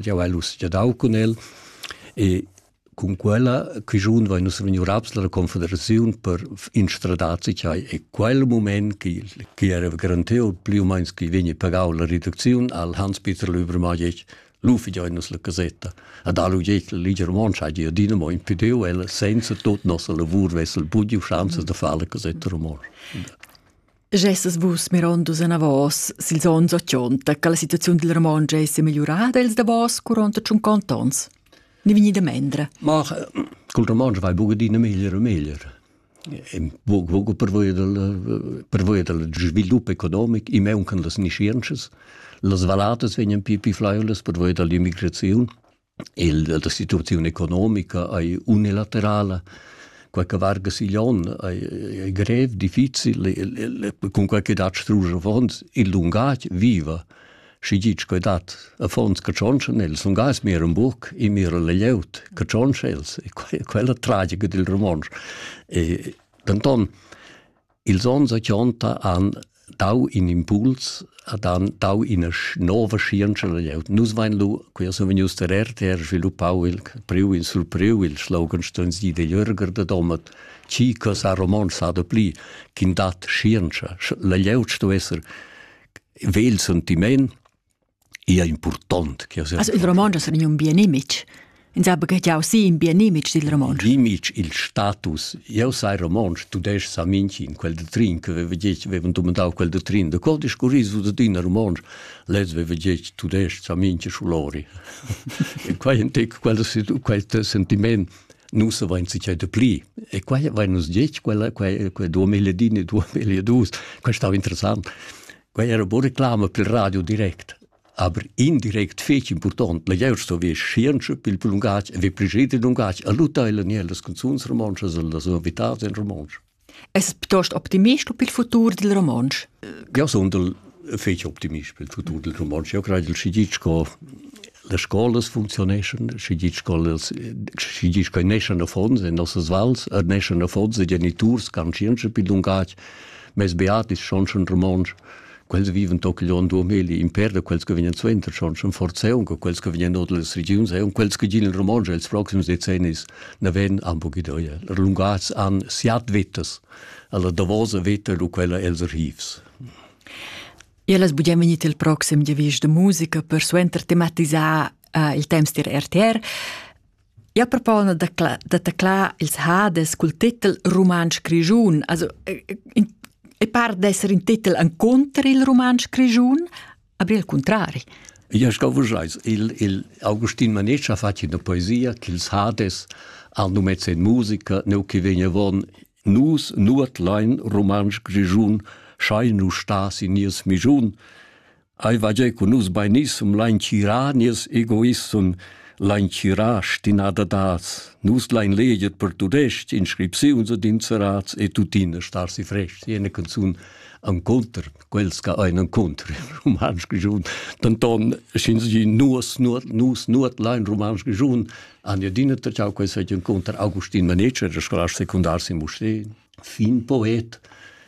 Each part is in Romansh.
jau hai uschia dau cun el e cun quella chischun vai nus vegniu raps la confederaziun per instradar cai e quel moment che che era garanteu pli u meins che vegni pagau la reduziun al Hans Peter Lübermajec lu figiai nus la casetta ad alu jet la ligia romontscha gia dinamo impedeu ella senza tot nossa lavur vessel budiu schanzas da far la casetta romontscha Gessas vus mirondus anavos sils onns ochonta che la situaziun dil romontsch ei semegliurada els davos curonta tschuncont ons? Ni vegni da mendre? Ma col romontsch vai buca adina meglier e meglier. Buc buc per voi dal per voi dal svilup economic, i mauncan las nischientschas, las valladas vegnan pli pli flaiulas per voi dall'immigraziun. Il da situaziun economica ei unilaterala, quei che varga sigl onn ei, ei grev, difficil, cun quei che dat strusch affons, il lungatg viva. Schi gitg quei dat affons che tschontschen els, lungatg mir un buc e mir la glieud che tschontsch els, e quella tragica dil romontsch. E, denton, Ils onns ochonta han dau in impuls, han dau ina nova scienza da glieud. Nus vein lu, quei sun vegnius der RTR sviluppau il priu in surpriu il slogan ston sie de Jürger de Domat, chi cosa roman sa de pli, kin dat scienza. La glieud sto esser vegl sentiment, ia impurtont che as il romontsch es un bien image ins ha baghegiau si in bien image dil romontsch l'image il status eu sai romontsch tudesc sa minchin quel de trin che veva gec vevan dumandau quel de trin de quel discurris du din romontsch les veva gec tudesc sa minche schulori e quai entec quel quel sentiment nu se vain sichai de pli e quai vain nus gec quella quai quai 2000 din e 2002 quai stau interessant Quei era buca reclama pil radio direct, aber indirect fetg impurtont la glieud sto ver schientscha pil pil lungatg e vi pregider lungatg a luttar e nier las canzuns romontschas e las novitats en romontsch. Es piuttost optimist per il futur del romontsch? Ja, sondel fetg optimist per il futur del romontsch. Io credo che schigic co le scuole funzioneschan, schigic co schigic che nescen a fonds in nossas vals, er nescen a fonds i geniturs can scienza per lungatg mes beatis schonschen romontsch quels viven toc on duomeli imper da quels che vegnan suenter schon schon forzeun che quels che vegnan od las regions e un quels che gin il romontsch els proxims decennis na ven am bu gidoia lungas an siat vettas alla davosa vetta du quella els archivs E las bugen vegnit il proxim giavisch de musica per suenter tematisar uh, il temps dir RTR. Ja propona da, cla- da taclar ils hades cul titel Rumantsch Grischun. Also, e par d'esser in titel encontr il Rumantsch Grischun, aber il contrari. Ja, ich glaube, il, il Augustin Manetsch ha fatto una poesia che ils Hades hanno mezzo in musica, no che vegna von Nus nuot lein rumantsch grischun, schai nu stas in nies mischun. Ei va giei con nus beinisum lein tira nies egoissum, lein tira stinada das. Nus lein leget per tudest inscripziuns ed inserats e tuttina star si frest, jene canzun an conter. quels che ein encontr romansch giun denton schin sie nus nus nus nus lein romansch giun an je dinne tau quei se encontr Augustin Manece der scolar secundar si musteen fin poet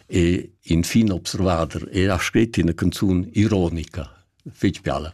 e in fin observader e ha scrit in canzun ironica fetg bella